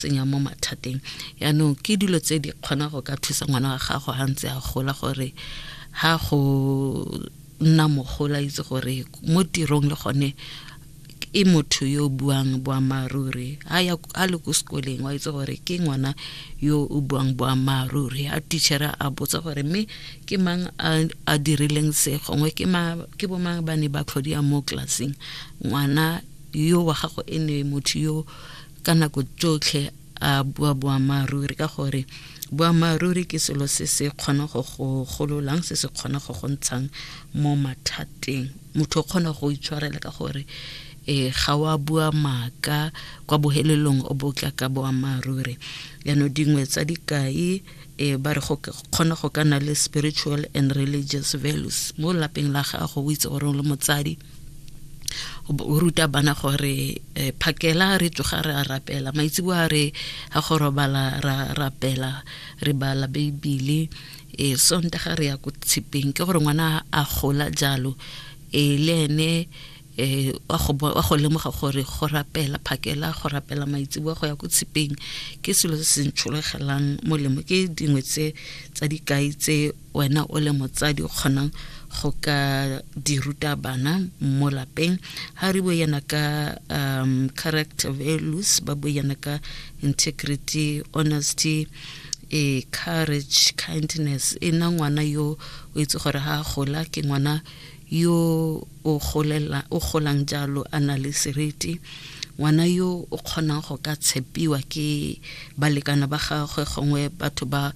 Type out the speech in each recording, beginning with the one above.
tsenya mo mathateng yaanong ke dilo tse di kgona go ka thusa ngwana wa gago ga ntse a gola gore ga go nna mogola itse gore mo tirong le gone e motho yo buang boammaaruri a le ko sekoleng wa itse gore ke ngwana yo o buang boammaaruri a tichere a botsa gore mme ke mang a dirileng se gongwe ke bo mang ba ne ba tlhodia mo tlelaseng ngwana yo wa gago e ne motho yo ka nako tsotlhe a bua boammaaruri ka gore boammaaruri ke selo se se kgona go go gololang se se kgona go go ntshang mo mathateng motho o kgona go itshwarela ka gore e ga wa bua maaka kwa bohelelong o botla ka boammaaruri yano dingwe tsa dikai e ba re go kgona go ka na le spiritual and religious values mo lapeng la gago o itse gore o le motsadi o ruta bana gore eh, phakela re tsoga re a rapela maitseboa re ga go robala ra rapela re bala beibele e sonta ga re ya ko tshepeng ke gore ngwana a gola jalo e le ene eh wa go lemoga gore go rapela phakela go rapela maitseboa go ya ko tshepeng ke selo se se ntsholegelang molemo ke dingwe tse tsa dikai tse wena o le motsadi o kgonang go ka di ruta bana mo lapeng ga re bue yana ka um, character values ba bue yana ka integrity honesty e courage kindness e na ngwana yo o itse gore ga a gola ke ngwana yo o golang jalo a na le seriti ngwana yo o kgonang go ka tshepiwa ke balekana ba gagwe gongwe batho ba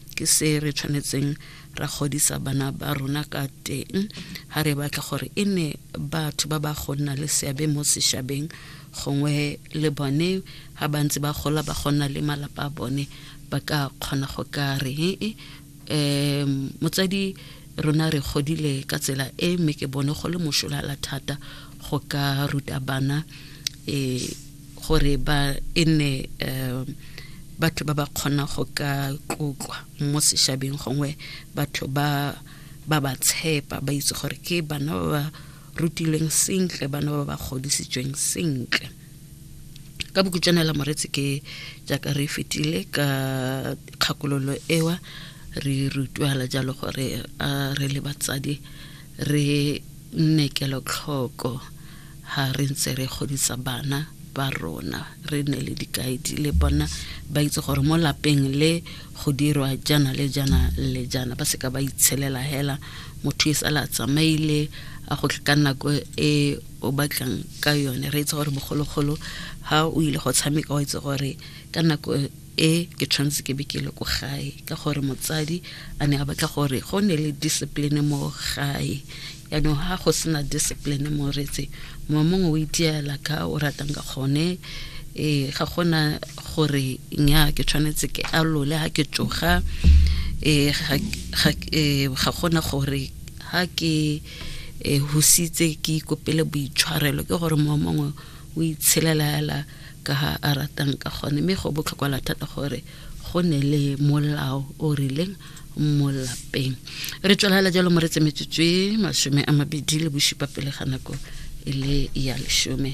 ke se re tshwanetseng ra godisa bana ba rona ka teng ga re batla gore e ne batho ba ba go nna le seabe mo sešabeng gongwe le bone ga ba ntse ba gola ba gonna le malapa a bone ba ka kgona go ka re um motsadi rona re godile ka tsela e mme ke bone go le mošolala thata go ka ruta bana um gore ba e nne um batho ba ba kgona go ka tlotlwa mo sešabeng gongwe batho ba ba ba tshepa ba itse gore ke bana ba ba rutilweng sentle bana ba ba godisitsweng sentle ka bokutswanela moretsi ke jaaka re fetile ka kgakololo ewa re rutwala jalo gore a re le batsadi re Nne kelotlhoko ha re ntse re godisa bana ba rona, re nne le dikaedi le bona ba itse gore mo lapeng le go dirwa jana le jana le jana, ba seka ba itshelela hela motho e sala tsamaile a go ka nako e o batlang ka yone. Re itse gore bogologolo ha o ile go tshameka o itse gore ka nako e ke tshwanetse ke be ke le ko gae ka gore motsadi a ne a batla gore go ne le discipline mo gae yaanong ga go sena discipline mo retse mongwe mongwe o itiela ka o ratang ka gone um ga gona gore nya ke tshwanetse ke alole ga ke tsoga um ga gona gore ga ke um husitse ke ikopele boitshwarelo ke gore mongwe mongwe o itshelelaela ka ga a ratang ka gone, mme go botlhokwala thata gore go ne le molao o rileng mo lapeng re tswelela jalo mo re tsemetsetswe masome a mabedi le bosupa pele ga nako e le ya lesome